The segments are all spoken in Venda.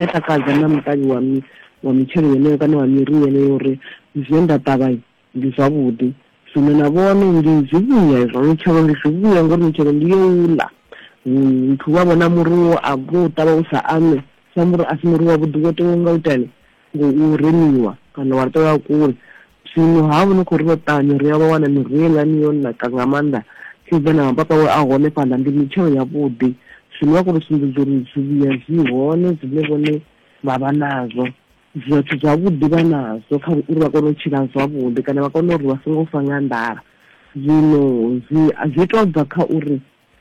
a takadza na muṱavhi wa mi wa mitshelo yeneyo kana wa miri yeneyo uri zwine nda ṱavha ndi zwavhuḓi zwino na vhone ndi zwivhuya izwo mitshelo ndi zwivhuya ngori mitshelo ndi yo u ḽa muthu wa vhona muri wo a vho u ṱavha u sa ame sa muri a si muri wavhuḓi wo tewa nga u itani ngo u remiwa kana wa tea wa kule Zwino ha vha ni khou ri vha ṱavhanye ri ya vha wana miruho heiḽani yo naka nga maanḓa, sedza na mapapa we a hone fhaḽa, ndi mitshelo yavhuḓi. Zwino vha khou ri sumbedza uri zwivhuya zwi hone zwine vhone vha vha nazwo, zwithu zwavhuḓi vha nazwo kha uri vha kone u tshila zwavhuḓi kana vha kone uri vha songo fa nga nḓala. Zwino zwi zwi tou bva kha uri.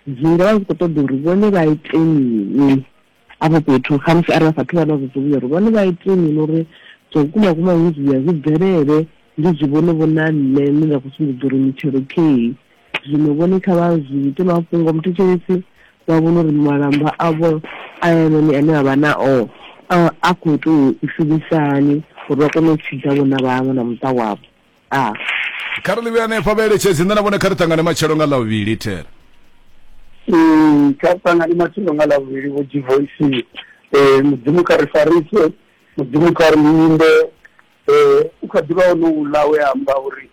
zwi nga vha zwi khou ṱoḓa uri vhone vha ite mini afho fhethu khamusi arali vha sathu vha na zwidzivhuya uri vhone vha ite mini uri zwa vhukuma vhukuma zwidzivhuya zwi bvelele ndi zwi vhone vho na nṋe ndi nga khou sumbedza uri mitshelo kheyi zwino vhone kha vha zwi ite mafhungo muthetshelesi vha vhone uri malamba avho a yanoni ane a vha na o a khou tou i shumisani uri vha kone u tshidza vhona vhaṅwe na muṱa wavho a kha ri ḽivhe hanefha vhaeletshedzi nṋe na vhone kha ri ṱangane matshelo nga ḽa vhuvhili thera Mm, kha ri ṱangane matshelo nga ḽa vhuvhili vho divoisini um mudzimu kha ri farise mudzimu kha ri linde um u kha ḓivha ono uḽa we amba uri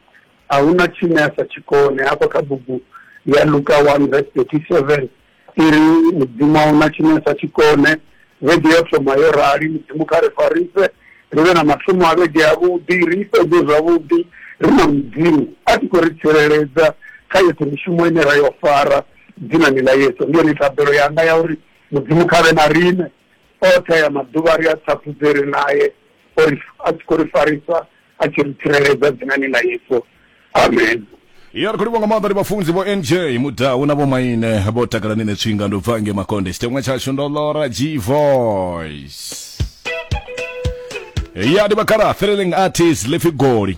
a hu na tshine a sa tshi kone hafha kha bugu ya luka one vese thirty seven I ri, Mudzimu a hu na tshine a sa tshi kone. Vhege yo thoma yo rali. Mudzimu kha ri farise ri vhe na mathomo a vhege avhuḓi, ri i fhedze zwavhuḓi ri na Mudzimu a tshi khou ri tsireledza kha yoṱhe mishumo ine ra yo fara. Dzinani ḽa Yesu. Ndi yone thabelo yanga ya uri Mudzimu kha vhe na riṋe. oṱhe aya maḓuvha ri a thaphudze ri naye ori a tshi khou ri farisa a tshi ri tsireledza dzinani ḽa yesu amen ya ri khou livha nga maanḓa ndi vhafunzi vho nj mudau na vhomaine vho takala ni ne tswinga ndo bva nge makonde tshiteṅwa tshashu ndo lora g voice ya ndi vhakhala threlling artist lifhi goli